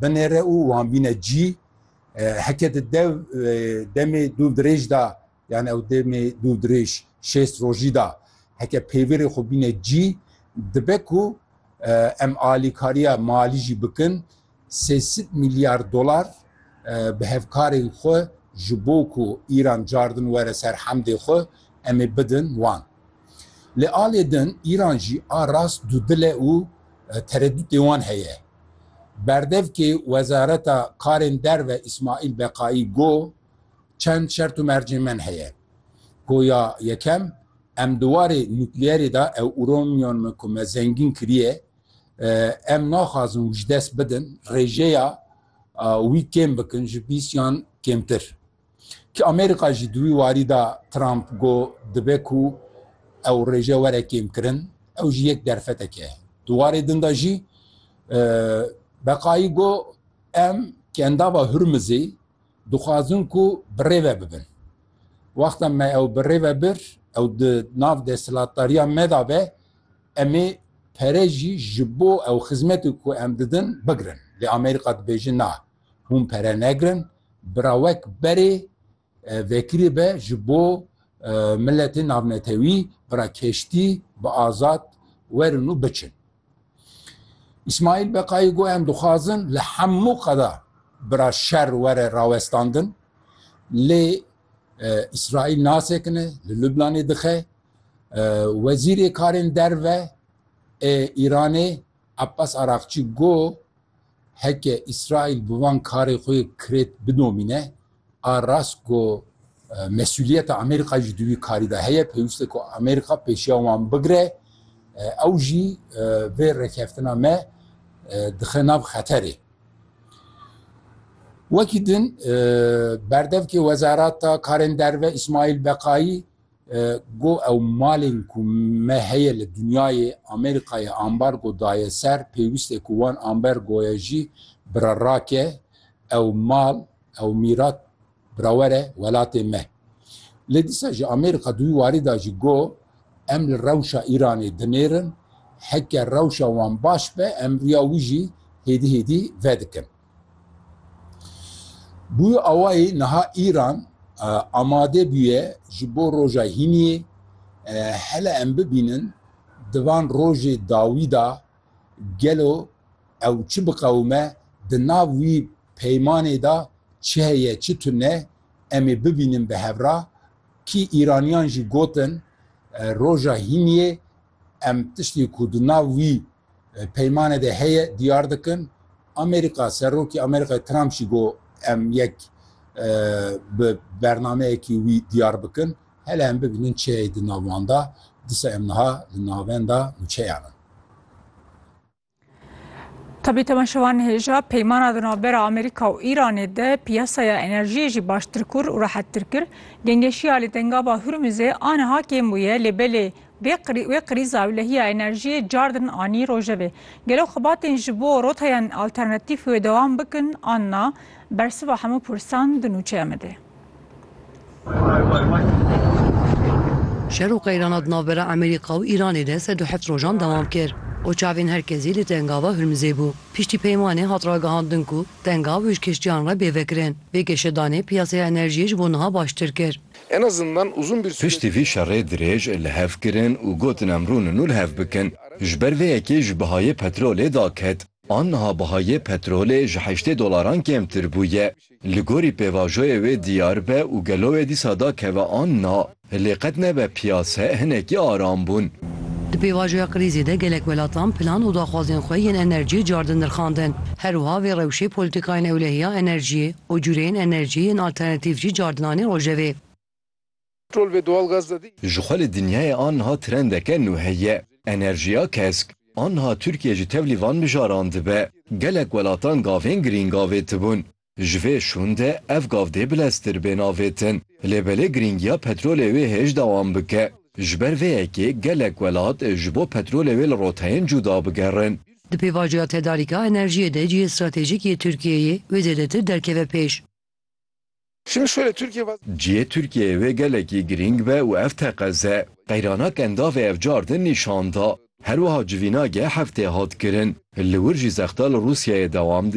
binêre û wan bîne cî. Heke di dev demê dûv dirêj de yani ew demê dûv dirêj şêst rojî de heke pêvêrê xwe bîne cî dibe ku em alîkariya malî jî bikin sê sed mîlyar dolar bi hevkarên xwe ji bo ku Îran cardin were ser hemdê xwe em ê bidin wan. Lê alê din Îran jî a rast dûdil e û teredûtê wan heye. Berdevkê Wezareta Karên Derve Îsmaîl Beqaî got, Çend şert û mercên men heye. Ku ya yekem, em di warê nukleerê de ew uranyuman min ku me zengîn kiriye, em naxwazin wijdes bidin, rêjeya wî kêm bikin ji bîst yan kêmtir. Ki Amerîka jî di wî warî de Trump got dibe ku ew rêje were kêmkirin, ew jî yek derfetek e. Di warê din de jî Beqayî got em ki endava Hurmizê dixwazin ku bi rê ve bibin. Wexta me ew bi rê ve bir, ew di nav desthilatdariya me de be, em ê pere jî ji bo ew xizmetê ku em didin bigirin. Lê Amerîka dibêje na, Hûn pere negirin, bira wek berê vekirî be ji bo miletê navnetewî, bira keştî bi azad werin û biçin. Îsmaîl Beqayî got em dixwazin li hemû qada bira şer were rawestandin lê Îsraîl nasekine, li Lubnanê dixe. Wezîrê karên derve ê Îranê Abbas Araqçî got Heke Îsraîl bi van karê xwe yê kirêt bidomîne, a rast ku mesûliyeta Amerîkayê jî di wî karî de heye, pêwîst e ku Amerîka pêşiya wan bigire, ew jî vê rêkeftina me dixe nav xeterê. Wekî din berdevkê Wezareta Karên Derve Îsmaîl Beqayî, Got ew malên ku me heye li dinyayê Amerîkayê ambargo daye ser, pêwîst e ku wan ambergoya jî bira rake, ew mal, ew mîrat bira were welatê me. Lê dîsa jî Amerîka di wî warî de jî got, Em li rewşa Îranê dinêrin, heke rewşa wan baş be em riya wî jî hêdî hêdî vedikin. Bûye awayî niha Îran amade bûye ji bo roja hîniyê hele em bibînin di van rojê dawî de gelo ew çi biqewime, di nav wî peymanê de çi heye çi tune em ê bibînin bi hev re. Kî Îraniyan jî gotin roja hîniyê Em tiştê ku di nav wî peymanê de heye diyar dikin. Amerîka, Serokê Amerîkayê Trump jî got em yek bi bernameyekî wî diyar bikin. Hele em bibînin çiyayê di nav wan de. Disa em niha li navenda nûçeyan in. Tabi temaşevan hêja peymana di navbera Amerîka û Îranê de piyasaya enerjiyê jî baştir kur û rehettir kir. Gengeşiya li Dengaba Hurmizê aniha kêm bûye lê belê wê krîza ewlehiya enerjiyê car din anî rojevê. Gelo xebatên ji bo roteyên alternatîf wê dewam bikin an na? Bersiva hemû pirsan di nûçeya me de ye. Şer û qeyrana di navbera Amerîka û Îranê de sed û heft rojan dewam kir û çavên her kesî li Tengava Hurmizê bû. Piştî peymanê hat ragihandin ku Tengav wij kiştiyan re bê vekirin. Vê geşedanê piyaseya enerjiyê ji bo niha baştir kir. Piştî vî şerê dirêj li hev kirin û gotin em rûnin nû li hev bikin. Ji ber vê yekê ji bihayê petrolê daket. An niha bihayê petrolê ji heştê dolaran kêmtir bûye. Li gorî pêvajoyê wê diyar be û gelo wê dîsa da keve an na, lê qet nebe piyase hinekî aram bûn. Di pêvajoya krîzê de gelek welatan plan û daxwazên xwe yên enerjiyê cardin nirxandin. Her wiha vê rewşê polîtîkayên ewlehiya enerjiyê û cureyên enerjiyê yên alternatîf jî cardinanî rojevê. Ji xwe li dinyayê aniha trendeke nû heye, enerjiya kesk. Aniha Tirkiye ji tevlî van mijaran dibe. Gelek welatan gavên girîng avêtibûn. Ji vê şûn de ev gav dê bileztir bên avêtin. Lê belê girîngiya petrolê wê hêj dewam bike. Ji ber vê yekê gelek welat ji bo petrolê wê li roteyên cuda bigerin. Di pêvajoya tedarîka enerjiyê de cihê stratejîk yê Tirkiyeyê wê zêdetir derkeve pêş. Cihê Tirkiyeyê wê gelekî girîng be û ev teqeze. Qeyrana Kendavê ev car din nîşan da. Herwiha civîna geh heftê hat kirin. Li wir jî zexta li Rûsyayê dewam dike.